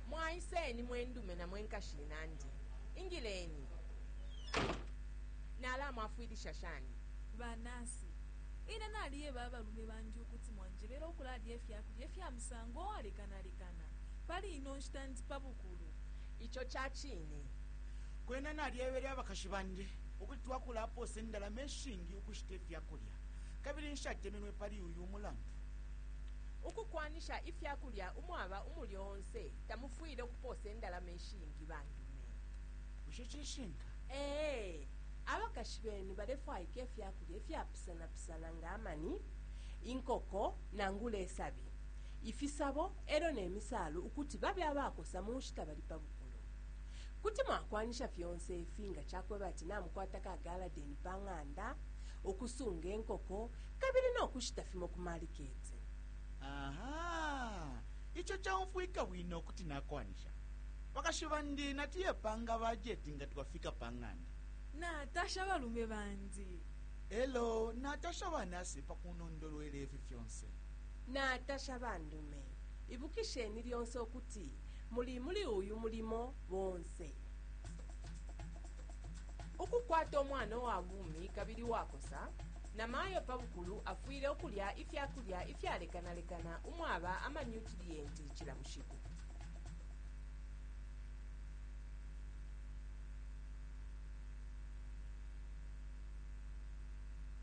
mwaiseni mwendume na mwenkashi inandi ingileni nalamwafwilisha shani banasi ine naliyeba abalume bandi ukuti mwanjebera okulalya ifyakulya ifya musango owalekanalekana pali ino nshita ndi pa bukulu Ico ca cine. Kwena nalyebele abakashi bandi ukuti twakulapoosa indalama ishingi ukushita ifya kulya, kabili nshatemenwe pali uyu mulandu. Ukukwanisha ifya kulya umwaba umulyo onse tamufwile ukupoosa indalama ishingi. Ba ndume. Bushe cishinka? Ee. Abakashi benu balefwaika ifya kulya ifyapusanapusana nga amani, inkoko, nangula isabi. ifisabo elyo ne misaalu ukuti babe abakosa munshita bali pa bukulu. Kuti mwakwanisha fyonse ifi nga cakweba ati namukwata ka galadeni pa ng'anda, ukusunga inkoko, kabili no kushita fimo ku maliketi. Aha! Ico caumfwika bwino ukuti nakwanisha. Bakashi bandi natuye panga bajeti nga twafika pa ng'anda. Natasha balume bandi. Elo natasha ba nasi pa kunondolwela ifi fyonse. Natasha bandume. Ibukisheni lyonse ukuti muli muli uyu mulimo bonse. Ukukwata umwana uwa bumi kabili uwakosa, namayo pa bukulu afwile ukulya ifya kulya ifyalekanalekana umwaba amanyutiliyenti cila bushiku.